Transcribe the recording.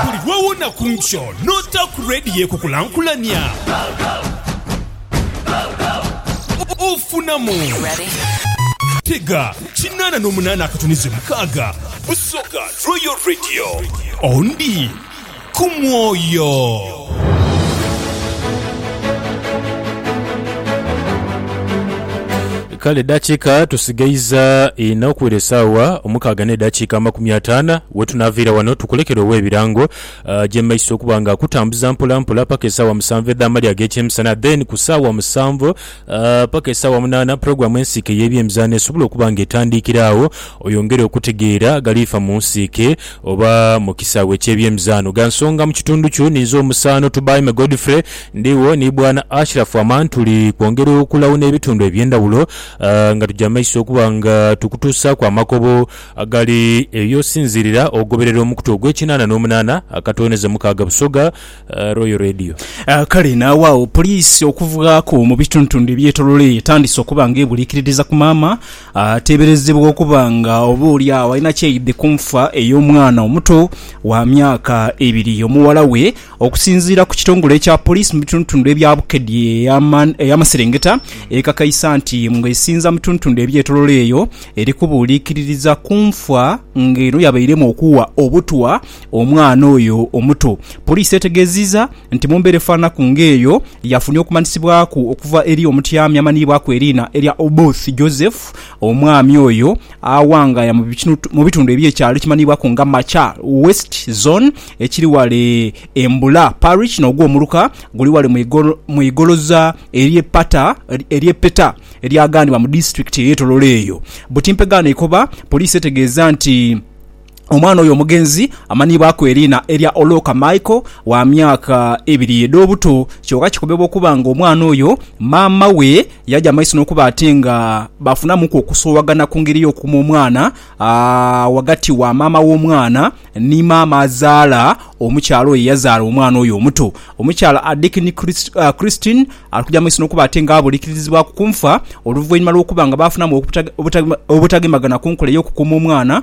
Buli lwe wuna ku nkyo n'ota ku leediyo ekukulankulania, ofunamu. Tega kinaana n'omunaana akatuniza omukaaga, Busoga Royal Radio. Ondi ku mwoyo. Kale edhakiika tusigaiza inha okwira esaawa omukaaga n'edhakiika amakumi ataana wetunaaviira wano tukulekere ow'ebirango aje mu maiso okuba nga akutambuza mpola mpola paka esaawa musanvu edh'amalya ag'ekyemisana then ku saawa musanvu paka esaawa munaana pulogulaamu ensiike ey'ebyemizaano esobola okuba nga etandiikira agho oyongere okutegeera agaliifa mu nsiike oba mu kisaawe eky'ebyemizaano. Gha nsonga mu kitundu kyo ninze omusaano Tubaime Godfrey. Ndigho ni Bwana Ashraf Aman tuli kwongera okulagho n'ebitundu eby'endhawulo nga tuja mu maiso okuba nga tukutuusaaku amakobo agali eyo osinziirira ogoberera omukutu ogw'ekinaana n'omunaana akatooneze mukaaga Busoga Royal Radio. Kale n'awaagho poliisi okuvaaku mu bituntundu ebyetoloire eyo etandise okuba nga ebuliikiririza ku maama ateeberezebwa okuba nga oba oli agho alina kyeyidde ku nfa ey'omwana omuto wa myaka ebiri y'omuwala we Okusinziira ku kitongole ekya poliisi mu bitundutundu ebya Bukedi ey'amaserengeta, ekakaisa nti ng'esinza mu tundutundu ebyetolola eyo, eri kubuuliikiririza ku nfa nga eno yabairemu okuwa obutwa omwana oyo omuto. Poliisi etegeziiza nti mu mbeera efananaku ng'eyo, yafunye okumanyisibwaku okuva eri omutyaami amanhiibwaku eriina erya Oboth Joseph, omwami oyo awangaaya mu bitundu eby'ekyalo ekimanhiibwaku nga Machar West Zone, ekiri ghale e Mbula Parish n'ogwo omuluka guli ghale mu igoloza ery'e Peta eryaganibwa mu disitulikiti ey'e Tororo eyo. Buti mpegaano ekoba, poliisi etegeeza nti omwana oyo omugenzi amanhibwaku eriina erya Oloka Michael wa myaka ebiri edh'obuto kyoka kikobebwa okuba nga omwana oyo maama we yaja maiso n'okuba ate nga bafunamuku okusoowagana ku ngeri y'okuma omwana ghagati wa maama w'omwana Ni maama azaala omukyala oyo eyazaala omwana oyo omuto, omukyala Adikini Christine ali kuja mu maiso n'okuba ate nga abulikirizibwaku ku nfa oluvainhuma lw'okuba nga baafunamu obutagemagana ku nkola ey'okukuuma omwana.